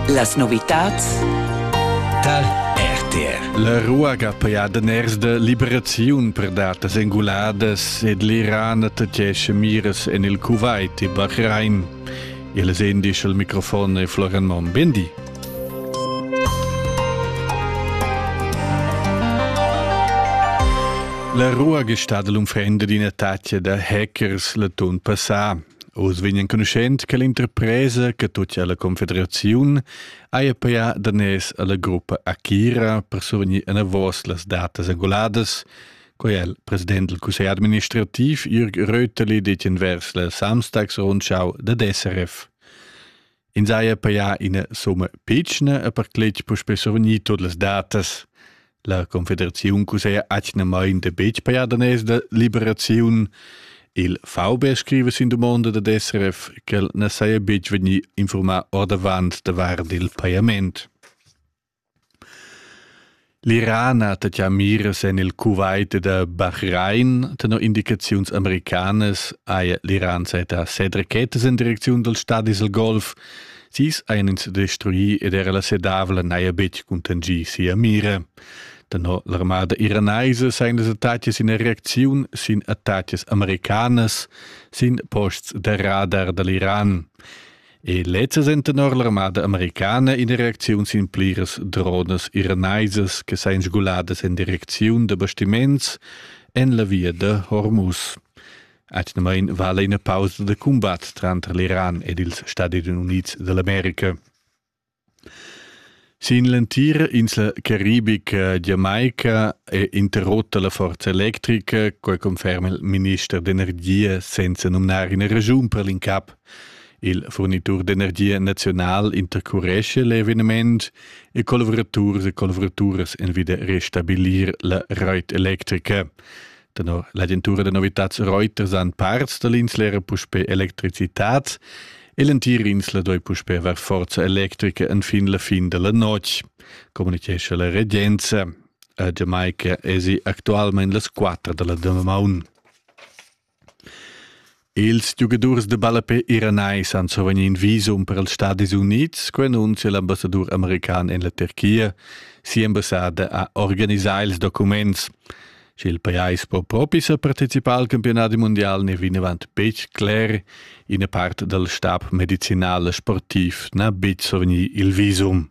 Las novitads tar RTR. La ruaga per daners de liberaziun per datas enguladas ed l'Iran attacchesce miras en il Kuwait e Bahrain. Il es indisch al microfon è Florian Monn. Bendi. La ruaga è stata l'unfrenda d'in attacco da hackers l'atun passà. Oz vegn enconuschent che l'interpresa che tut alla confederaziun haja pajà daners alla gruppa Akira per survegnir enavos las datas angoladas, quai è il president del cussegl administrativ Jürg Röteli detg envers la Samstagsrundschau dad SRF. Ins haja pajà ina summa pitschna e per cletg puspè survegnì tut las datas. La Confederaziun cuseja atgnamain da betg pajar daners da liberaziun. Il VB scriva sin dumonda dad SRF ch'el na saja betg vegnì infurmà ordavant davart il pajament. L'Iran ha taglià miras en il Kuwait ed a Bahrain. Tenor indicaziuns americanas haja l'Iran sajettà set rachetas en direcziun dals stadis dal Golf. Sis hajan ins destruì ed era la sedavla n'haja betg cuntanschì sia mira. Tenor l'armada iranaisa sajan las attacas ina reacziun sin attacas americanas sin posts da radar da l'Iran. E lezzas en tenor l'armada americana ina reacziun sin pliras dronas iranaisas che sain sguladas en direcziun da bastiments en la via da Hormuz. Atgnamain vala ina pausa da cumbat tranter l'Iran ed ils Stati Unids d'America. Sin l'entira insla caribica Jamaica è interrotta la forza electrica, quai conferma il minister d'energia senza numnar ina raschun per l'incap. Il furnitur d'energia naziunal intercurescha l'eveniment e collavuraturs e collavoraturas envida restabilir la rait electrica. Tenor l'agentura da novitads Reuters han parts da l'insla era puspè electricitat e l'entira insla doi puspè aver forza electrica enfin la fin da la notg, communicescha la regenza. A Jamaica esi actualmain las quattro da la damaun. Ils giugadurs da ballape iranais han survegni in visum per els Stadis Unids, quei annunzia l'ambassadur american en la Turchia. Sia ambassada ha organisà ils documents. Sch'il pajais po propi sa participar al campionat mondial ne vinavant betg cler. Ina part dal stab medicinal e sportiv n'ha betg survegni il visum.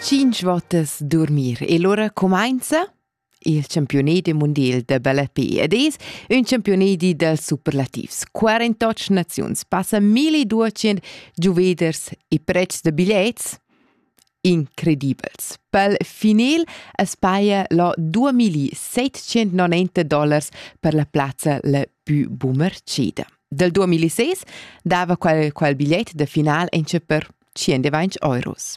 Cinc votas dormir. E lura cumainza il campiunedi mondial da balletpi ed es ün campiunedi dals superlativs. 48 naziuns, passa 1200 giuveders e prezs da bigliets incredibels. Per final es paia lo 2790 dollars per la plazza la più bumercida. Dal 2006 dava quel, quel bigliet da final enche per 120 euros.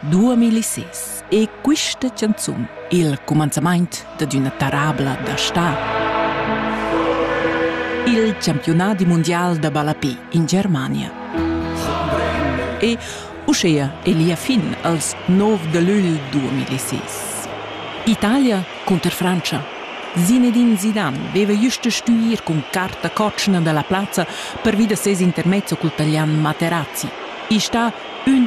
2006 è questa canzun il cumanzamaint dad üna tarabla da sta. Il campionat mundial da ballapé in Germania. E uschea è lia fin als 9 de lügl 2006. Italia cunter Francia. Zinedine Zidane veva just a stuir cun carta cocina dalla plazza per vi da ses intermezzo col talian Materazzi. I sta ün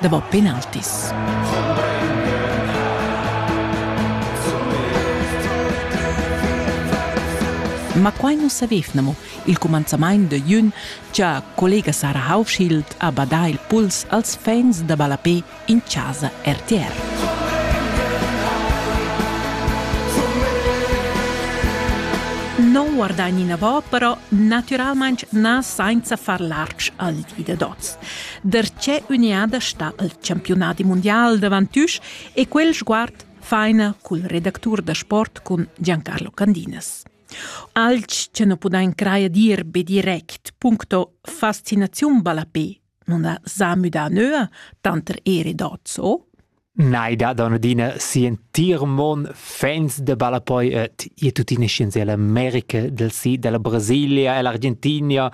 davo penaltis. Ma quai nu savevnamo il cumanzamaint da jün cha collega Sara Haufschild ha badà il puls als fans da ballapè in chasa RTR. Non guardagni inavò però, naturalmaing na sainza far lartg al di da d'hoz. Da tge üniada sta il campiunadi mundial davantüsch e quel sguard faina cul redactur da sport cun Giancarlo Candinas. Alch che nu pudain crajer dir be direct puncto fascinaziun ballapé non ha sa müdà nöa tanter Ere Dozzo Nei dat on adina si'entir mon fans da ballapoi ed ir tuttina scienza ella America del sid, ella Brasilia, ella Argentinia,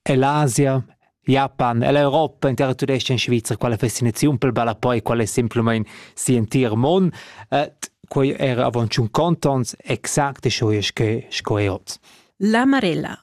ell'Asia, Japan, ell'Europa, in terra tudesca in Svizra, quella fascinaziun pel ballapoi, quella è semplamain si'entir mon. Ed quei era avon tschun contons exact e scho sco sco è hoz. La Marella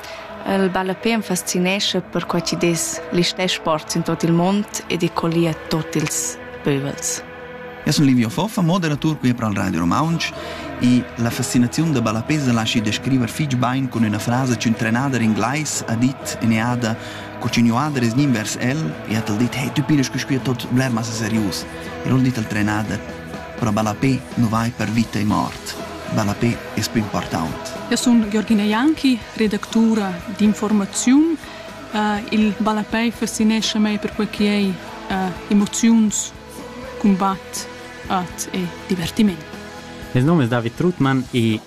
El ballape am fascinescha perquai chi dess listè sports in tuot il mond ed e collia tuot ils pövels. Eu sun Livio Foffa, moderatur qui pro il Radio Romaunch e la fascinaziun da ballape sa laschi descriver fich bain cun üna frasa ch'ün'trenada d'inglais ha dit in eada co ch'ünuader es gnit vers el e hat el dit «Hey, tü pinas quisquia tot bler massa serius». E l'ho dit al trenada «Pro ballape nu vai per vita e mort». Ballapè es pü important. Eu sun Georgina Janki, redactura d'infuormaziun. Il ballapè fascinescha mei perquai chi ei emoziuns, cumbat, art e divertiment. Il num es David Trutmann e il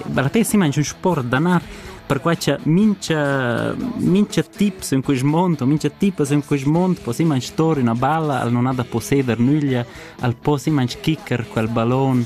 ballapè si mangia ün sport d'anar perquai cha mincha mincha tip in quist mond o mincha tipas in quist mond po si manch tor üna balla, al non ha da posseder nüglia, al po si manch quicker quel ballon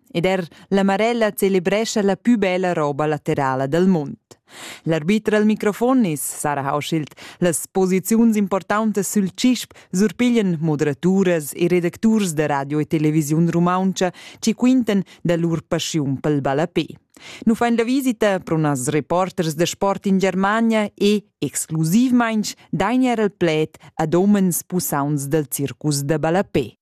Ed er la Marella celebrescha la pü bella roba laterala dal mund. L'arbiter al microfon is Sarah Hauschild. Las posiziuns importantas sül CISP surpiglian moderaturas e redacturs da radio e televisiun rumauntscha chi quintan da lur paschiun pel ballapè. Nu fain la visita pro nas reporters da sport in Germania e, exclusivmainch, dain eir al pled ad homens pusauns dal circus da ballapè.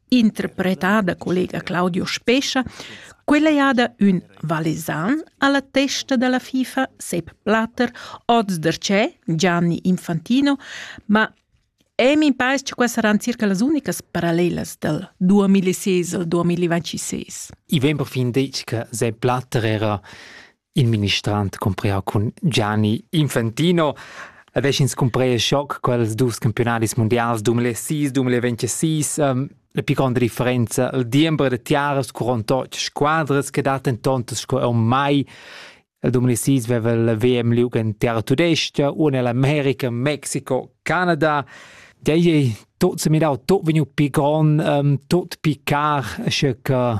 interpretada collega Claudio Spescha, quella jada ün valesan alla testa della FIFA Sepp Blatter, oz der c'è Gianni Infantino, ma E mi pare che queste saranno circa le uniche parallele del 2006 al 2026. I vem perfin detg che Sepp Blatter era Il ministrant cumprea cun Gianni Infantino e veschins cumprea schoc quels dus campionaris mundials 2006-2026. Ähm, la pli gronda differenza il diember da tiaras curont otg squadras che dat en tontas sco er mai. Il 2006 veva il VM liug en terra tudesca, una l'America, Mexiko, Canada. Dei tot se mirau tot vegnu pi gron, um, tot pi car, sche che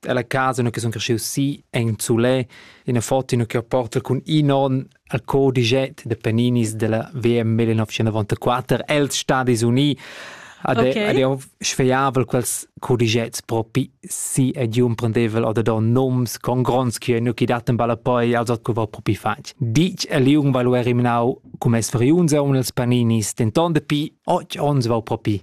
Ella casa ina che sun cresciu si en Zulè, ina foto che porta cun in on al codiget de Paninis della VM 1994 els Stadis Uniti ad okay. ad sfeiavel quels codigets propi si ed un prendevel oder da noms con gronds che nu chi daten balla poi als co va propi fatg. Dic e liung va lu eriminau cum es veriunza un els Paninis, denton de pi 8 ons va propi.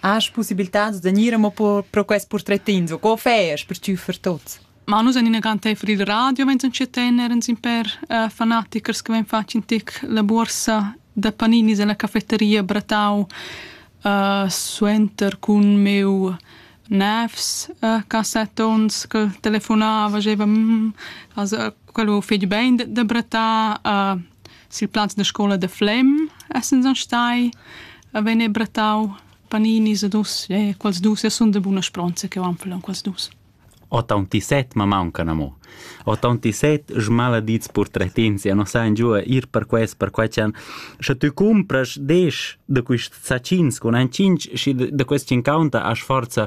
Has pussibiltats da gnir amo pro quest purtretins o co fais per tschüffer tuots? Ma nus en ina grantevol il radio, mentre che tener in per uh, fanatichers che ven fatg in tic la borsa da Paninis alla cafetteria Bratau uh, suenter cun meu nefs uh, cassettons che telefonava, diceva mm, also quello fetg ben da, da Bratà, uh, Sil plaz da scola da Flem essans stai a vegnir brattau paninis ed us e quels dus e sun da buna spronza cheu anfel en quels dus. Otauntissett ma mauncan amo. Otauntissett smaladits purtretins ja non sain giua ir per quest, per quai chan. Sche tü cumpras desch da quist sacins cun ein cinc, schi da quest cinquanta as forza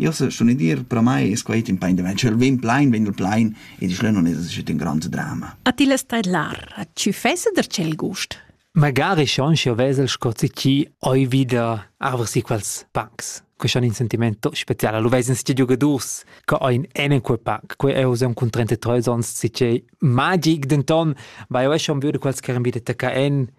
Io sun id dir, pro mai es quaid ün pain da vent, sch'el vegn plain, vegn el plain ed il schlön nun es aschi ün grand drama. A ti less tedlar, a tü fessa der tschel gust? Magari schon, sch'io vesel sco si chi hoi vi da arver si quels pancs. Que schon in sentiment special. Lu veisen sti giugadurs che ein en quel pack. Quei eu sem cun 33 ons, si che magic denton, vai eu schon vöd quels che eran wieder tacca en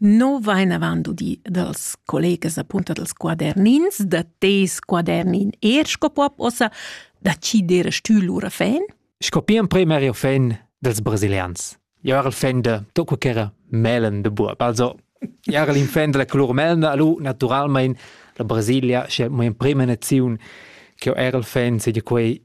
No vain avant udì dals collegas apunta dals quadernins, da tes quadernin eir sco pop ossa, da chi d'eira stü lura fan? Sco pia emprem era il fan dels brasilians. Jo era il fan de tocco che era melen de buob. Also, era il fan della color melna, allo naturalmein la Brasilia, sche mo in prima naziun che era il fan, sedia quei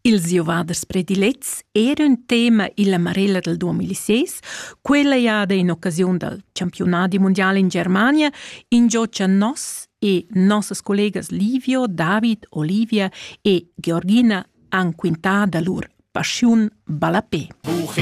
Ils giovaders predilets era ün tema illa marella dal 2006. Quella jada in occasiun dal campiunadi mundial in Germania ingio cha nos e nossas collegas Livio, David, Olivia e Georgina han quintà da lur paschiun ballapè. Buchina